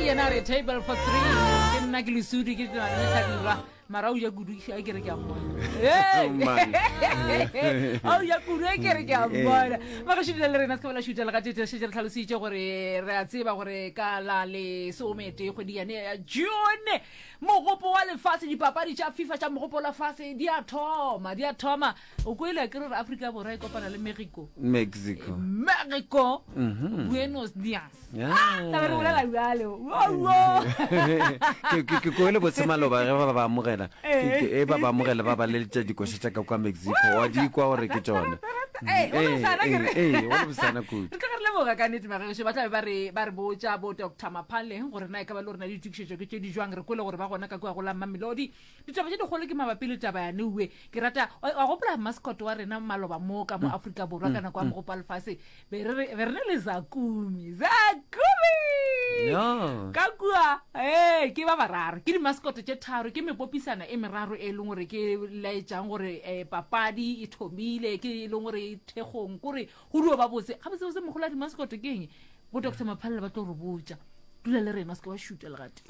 yena re table for three ke nna ke lesudi ke tladirwa mara o ja kudu a kere ke a mmona o ja kudu a kere ke a mmona magašudile le rena se ka bela šutela ga tetešetse re tlhalositše gore re a tseba gore ka la lesomete kgwedi yane ya june mogopo wa lefatshe dipapadi tša fifa tša mogopo wa lefatshe di a thoma di a thoma o kwele a ke re afrika borwa e kopana le mexico mexico mexico mhm. buenos dias ah, ke kwele botsemaloba ge ba ba amogela eh. e ba ba amogela ba ba leletša dikoša tša ka kwa mexico wa di kwa gore ke tsone eh, eh, golobosana kudu leboga ka nete magaešo ba tlabe ba re ba re botsa bo doctor maphaleng gore na e ka ba le gore na ditokišetšo ke tse di jwang re kwele gore ba gona ka kua go la mmamelodi Ditaba tše dikgolo ke mabapi le taba ya Neue. Ke rata, wa, wa gopola mascot wa rena maloba mo ka mo mm. Afrika Borwa mm. ka nako ya mm. mogopo wa lefase, be re be re ne le Zakumi. Zakumi! No. Ka kua, eh, ke ba bararo. Ke di mascot tše tharo, ke mepopisana e meraro e leng gore ke laetšang gore eh papadi e thomile, ke e leng gore e thekgong, kore Go dio ba botse, gabotsebotse mogolo a di maskoto ke eng? Bo Doctor Maphalela ba tlo re botša. Dula le rena, se ke wa šutwa le gatee.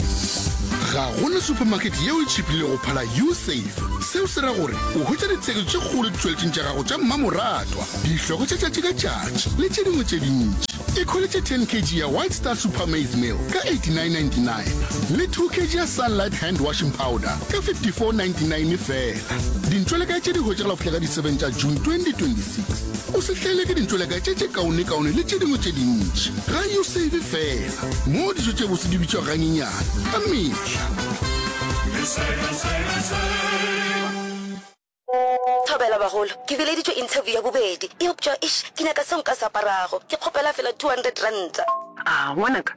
Ga go na supermarket yeo e tšhipile go phala U-Save. Seo se ra gore o hwetša ditshegetšo tše kgolo ditšweletšong tša gago tša mmamoratwa, dihloko tša tšatši ka tšatši le tše dingwe tše dintši. Ikhweletše 10 kg ya White Star Super Maize Meal ka 89.99 le 2 kg ya Sunlight Hand Washing Powder ka 54.99 fela. Dintšweleka tše di hwetšagala go fihla ka di 7 tša June 2026. O se hlaelwe ke dintšoleka tše tše kaonekaone le tše dingwe tše dintši. Ga yo save fela, moo dijo tše bose di bitšwa ganyenyane ka mehla. Thobela bagolo, ke bileditšwe interview ya bobedi eupša eish ke nyaka seo nka se aparago. Ke kgopela fela two hundred ranta. Aah ngwanaka,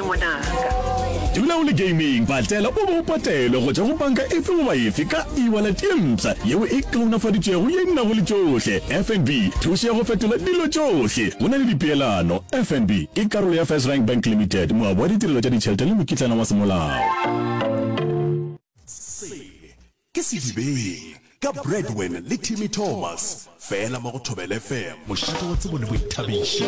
ngwanaka. Dula o le gaming patela o be o patelwe go tšwa go banka efe goba efe ka e-wallet ye mpsha yeo e kaonafaditšwego ye e nago le tšohle. FNB, thušo ya go fetola dilo tšohle go na le dipeelano. FNB ke karolo ya FirstRand Bank Limited, moabi wa ditirelo tša ditšhelete le mokitlana wa semolao. Ke Sedibeng ka Bradwin le Timmy Thomas fela mo go Thobela FM. Mošate wa tsebo le boithabiši.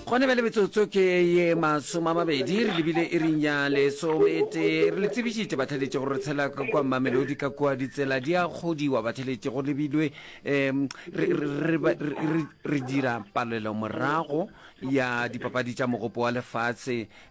Gone bjale metsotso ke ye masome a mabedi re lebile iring ya lesometee. Re le tsebišitše batheletše gore re tshela kua Mamelodi ka kua ditsela di a kgodiwa batheletše go lebilwe um re, re, re, re, re dira palelomorago ya dipapadi tša mogopo wa lefase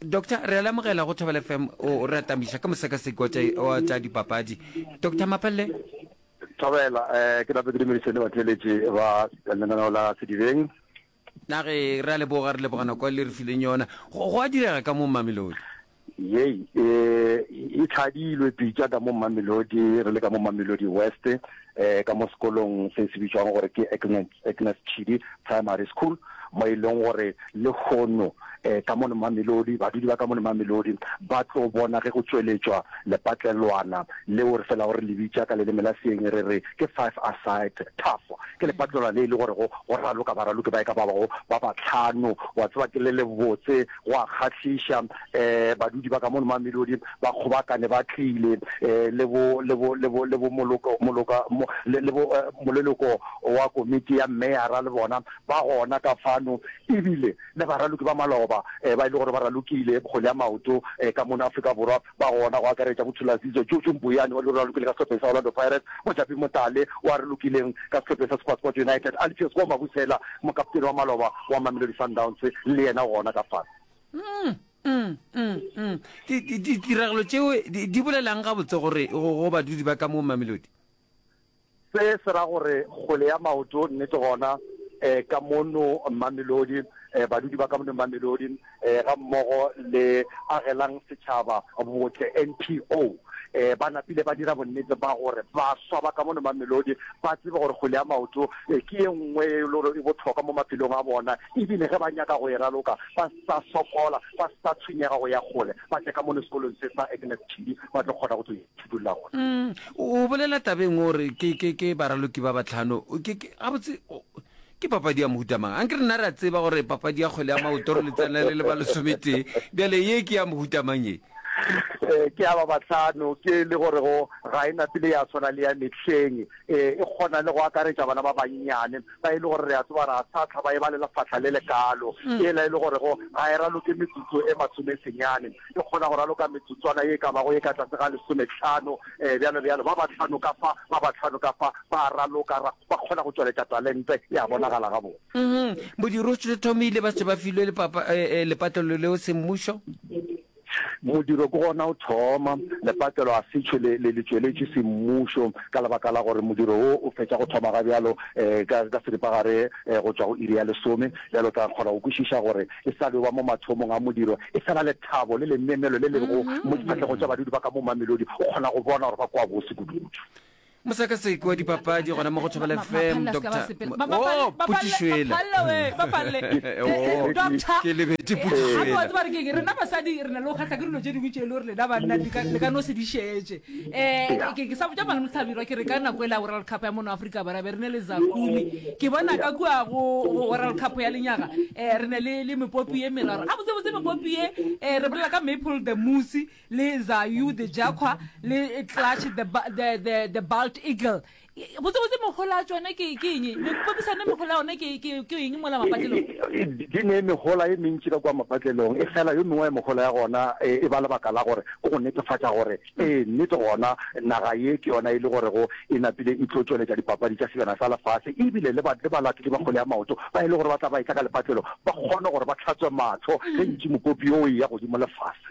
Doctor, re a lemogela go Thobela FM o re atamiša ka mosekaseki wa tša wa tša dipapadi. Doctor Mapelle, Thobela, eh, ke nape ke dumedise le batheletši ba lenaneo la Sedibeng. na re re a leboga re leboga nako e le re fileng yona. Go go a direga ka mo Mamelodi. Yei, eh, e tlhadilwe pitša ka mo Mamelodi, re le ka mo Mamelodi West, eh, ka mo sekolong se se bitšwang gore ke Eckman. Agnes Tshidi Primary School, mo e leng gore lehono eh, ka mone Mamelodi, badudi ba ka mone Mamelodi ba tlo bona ge go tšweletšwa lepatlelwana leo re felago re le bitša ka leleme la seeng re re ke five aside tough. Ke lepatlelwana le e le gore go raloka baraloki ba e ka ba bago ba batlhano, wa tseba ke le lebotse Go a kgahliša, um badudi ba ka mono Mamelodi ba kgobakane ba tlile um le bo, le bo, le bo, le bo moloko, moloka, mo, le, le bo, uh, moleloko wa komiti ya meyara le bona ba gona ka fano, e bile le baraloki ba maloba um ba e le gore ba ralokile kgole ya maoto um ka mono Afrika Borwa. ba gona, go akaretša Motholasizwe Jojo Mboyane wa Lorura Lukile ka sehlopheng sa Orlando Pirates, Mojapi Motale wa re lokileng ka sehlopheng sa Supersport United, Alpheus Koo Mabusela, mokaptene wa maloba wa Mamelodi Sundowns, le yena gona ka fase. Mm, mm, mm, mm. Di- di- Ditiragalo tšeo di di bolela'ng gabotse gore go go badudi ba ka mo Mamelodi? Se se ra gore kgole ya maoto, nnete gona, eh, ka mono Mamelodi, eh, badudi ba ka mono Mamelodi, eh, ga mmogo le Agelang Setšhaba Botle, NPO, eh, ba napile ba dira bonnete ba gore baswa ba ka mono Mamelodi ba tsebe gore kgole ya maoto, eh, ke ye nngwe e le gore e bohlokwa mo maphelong a bona, ebile ge ba nyaka go e raloka, ba sa sokola, ba sa tshwenyega go ya kgole, ba tle ka mono sekolong se sa Agnes Chili, ba tlo kgona go tlo e. thuto la gona. Mm, o bolela tabeng o re ke, ke, ke baraloki ba batlhano. Ke, ke, gabotse, o- ke papadi ya mohuta mang? A nke rena re a tseba gore papadi ya kgwele ya maoto re letsana le le ba lesometee. Bjale ye ke ya mohuta mang ye? Eh, ke ya ba bahlano ke le gore go ga e na pele ya swana le ya mehleng eh, e kgona le go akaretša bana ba bannyane ba e le gore re a tseba ra sa tlha ba e balela fahla le lekalo e la e le gore go ga e raloke metsotso e masomesenyane Ke kgona go raloka metsotswana ye e ka bago ye ka tlase ga lesometlhano, ee, bjalo bjalo. Ba bahlano ka fa, ba bahlano ka fa, ba a raloka, ra, ba kgona go tšweletša talente, e a bonagala gabotse. Uhum. Bodirothtom e ile ba tšwa ba filwe lepapa, e, e, lepatlelo leo semmušo. Modiro ke gona o thoma, lepatlelo a se tšhwe le, le, le tšweletše semmušo, ka lebaka la gore modiro wo o fetša go thoma ga bjalo, e, ka, ka seripagare, e, go tšwa go iri ya lesome. Bjalo o tla kgona go kwešiša gore e sa le o ba mo mathomong a modiro. e sa na lethabo le lenenelo le lego mo diphatlego tša badudi ba ka mo Mamelodi, o kgona go bona gore ba kwa bose kudukudu. Mosekaseki wa dipapadi gona mo go Thobela FM, Doctor Oh, Putišwela. Ke lebete Putišwela. rena basadi re na le go kgatlha ke dilo tše dingwe tše e le gore lena banna le ka no se di šetše um ke sa botsa malome tlhabirwa ke re ka nako e la world cup ya mono aforika bora be re ne le zakumi ke bona ka kua go world cup ya lenyaga um re ne le mepopi e meraro a botsebotse mepopi ye um re bolela ka maple the moose le zayu the jacqua le clutch the balt eagle botsebotse megola a tsone ke eng mepopisano megola yone ke eng mola mapatlelong di ne megola e mentši ka kwa mapatlelong e fela yo mengwe ya megola ya gona e ba lebaka la gore ke go netefatša gore ee nnete gona naga ye ke yona e le gorego e napile e tlo tšweletša dipapadi tša sejana sa lefase ebile le balatedi ba kgole ya maoto ba e le gore ba tla ba e tla ka lepatlelo ba kgone gore ba tlhatswe matlho ge ntši mopopi yo o e ya godimo lefase